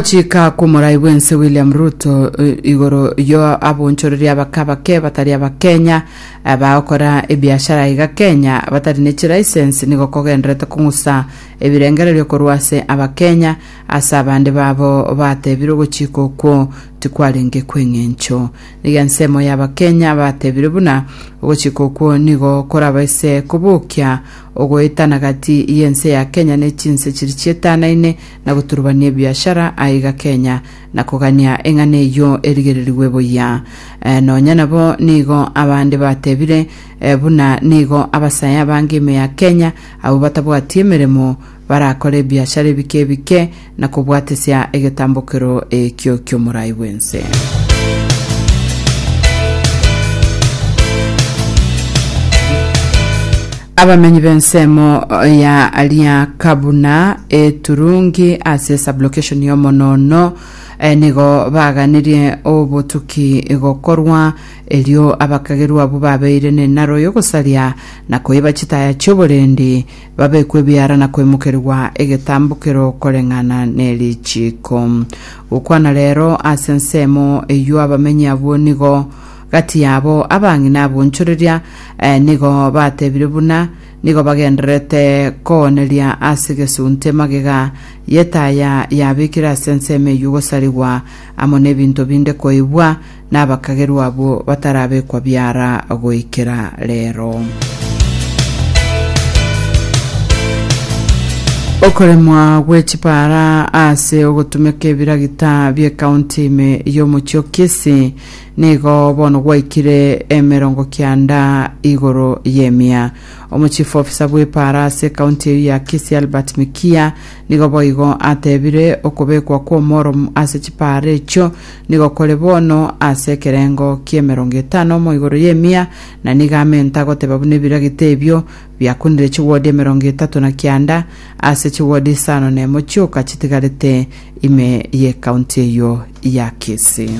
Gochika kw'omorai bw'ense William Ruto eh, igoro yo abonchoreri abakabake batari abakenya eh, bagokora ebiashara iga Kenya batari ne chilicense nigo kogenderete kong'usa ebirengererio korwa ase abakenya ase abande babo batebirwe gochika okwo tikwarenge kw'eng'encho nigo ensemo ya abakenya batebire buna gochika okwo nigo korabaise kobokia ogoetana gati y'ense ya Kenya ne chinse chiri chietanaine na goturubania ebiashara aiga Kenya na kogania eng'ana eyio erigererigwe buya. Eh, nonya nabo nigo abande batebire eh, buna nigo abasae abange ime ya Kenya abwo batabwati emeremo barakore ebiashara ebike ebike na kobwatesia egetambokero ekio ki'omorai bw'ense. Abamenyi b'ensemo ya Liakabuna eturungi ase sublocation y'omonoono eh, nigo baganirie obotuki gokorwa, erio abakagerwa abwo babeire nenaro y'ogosaria na koiba chitaya chi'oborendi, babekwe ebiara na koimokerigwa egetambokero koreng'ana nerichiiko. Gokwana rero ase ensemo eyio abamenyi abwo nigo Gati yabo abang'ina ab'onchoreria nigo batebire buna nigo bagendererete kooneria ase gesunte emagega y'etaya yabekire ase ensemo eyio gosarigwa amo n'ebinto binde koibwa nabakagerwa abwo batarabekwa biara goikera rero. Okoremwa gwe chipara ase ogotumeka ebiragita bie kaunti ime y'omochie o Kisii Nigo bono gwaikire emerongo kianda igoro y'emia. Omo chief officer bw'epaara ase county eyio ya Kisii Albert Mikia nigo boigo atebire okobekwa kw'omorom ase chipaara echio nigo kore bono ase ekerengo ki'emerongo etano omo igoro y'emia na nigo amenta goteba buna ebiragita ebio biakunire chigodi emerongo etato na kianda ase chigodi isano na emo chioka chitigarete ime y'ekaunti eyio ya Kisii.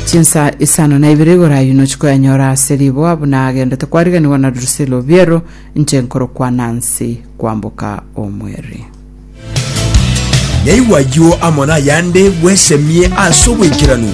Chinsa isano na ibere igoro ayio nochi koyanyora ase riboa buna agendete kwariganigwa na Drusilla Obiero inche nkorokwa Nancy kwamboka omweri. Naigwa ayio amo nayande bwesemie ase obwaikeranu.